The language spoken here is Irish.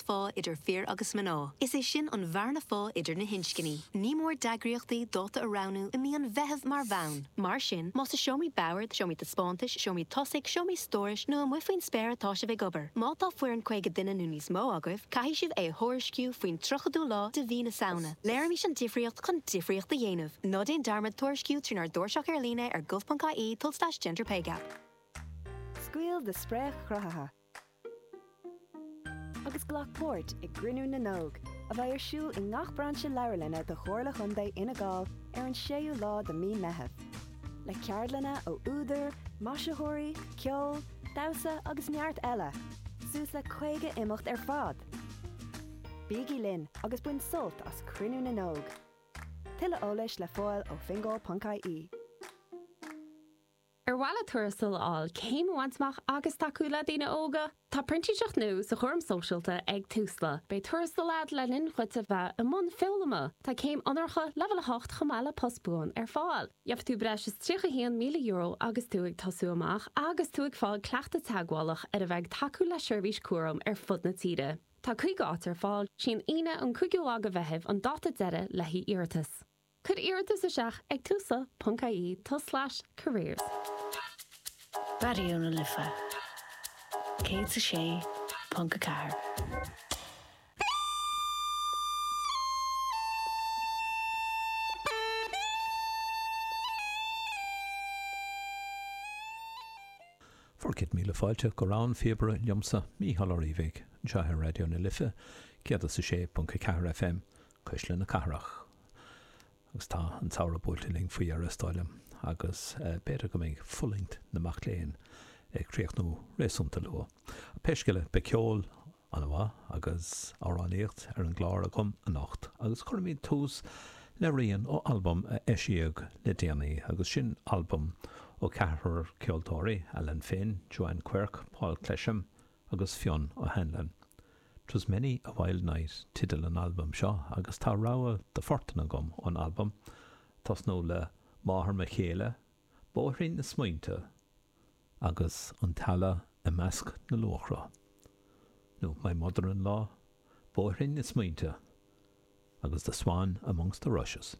bheacht phá idir fir agus mná. Is é sin an bhearna phá idir na hinscní. Ní mór d'eagraíochtaí dáta a roghnú i mí an Mheithimh mar bhonn. Mar sin, más i seomraí boird, seomraí taispeántais, seomraí tosaigh, seomraí stórais nó amuigh faoin spéir atá sibh ag obair, má tá foireann 50 duine nó níos mó agaibh, caithfidh sibh é a thuairisciú faoin 30ú lá de mhí na Samhna. Léirímis an difríocht chun difríocht a dhéanamh. Ná déan dearmad tuairisciú trínár dtairseach ar líne ar gov.ie tulslais-gender-pay-gap. Scaoil do splanc chruthaitheach! agus glac páirt i gCruinniú na nÓg, a bheidh ar siúl i ngach brainse leabharlainne de Chomhairle Chontae Fhine Gall ar an 6ú lá de Mhí an Mheithimh, le ceardlanna ó údair, maisitheoirí, ceol, damhsa agus neart eile, suas le 50 imeacht ar fad! Bígí linn agus bain sult as Cruinniú na nÓg! Tuilleadh eolais le fáil ó fingal.ie. Ar mhaith leat tuarastal a fháil, céim a bhaint amach agus tacú le daoine óga? Tá printíseacht nua sa chúram sóisialta ag Tusla. Beidh tuarastal agat le linn dhuit a bheith i mbun foghlama. Tá céim onóracha leibhéal 8 chomh maith le post buan ar fáil. Gheobhaidh tú breis is €31,000 agus tú ag tosú amach agus tú ag fáil cleachtadh teagmhálach ar bheith ag tacú le seirbhís cúraim ar fud na tíre. Tá 50 áit ar fáil. 'Sí an Aoine an 5ú lá de Mheitheamh an dáta deiridh le haghaidh iarratas. Cuir iarratas isteach ag tusla ponc ie tulslais careers. Raidió na Life 106.4. Fearadh céad míle fáilte go Rogha an Phíobaire liomsa, Mícheál Ó Riabhaigh, anseo ar Raidió na Life 106.4 FM, Cuisle na Cathrach. Agus tá an Samhradh buailte linn faoi dheireadh is dóigh liom agus b'fhéidir go mbeidh fulaingt na mac léinn ag críochnú réasúnta luath. Pé scéal é, beidh ceol ana mhaith agus amhránaíocht ar an gclár agam anocht agus cuirfimid tús le rian ó albam a eisíodh le déanaí agus sin albam ó cheathrar ceoltóirí, Alan Finn, Joanne Quirke, Paul Clesham, agus Fionn O Hanlon. 'Twas many a wild night teideal an albaim seo agus tá rogha de phoirt agam ón albam, tosnú le Máthair mo chéile, Bóithrín na smaointe agus An Eala i measc na luachra, nó My mother-in-law, Bóithrín na smaointe agus The swan amongst the rushes.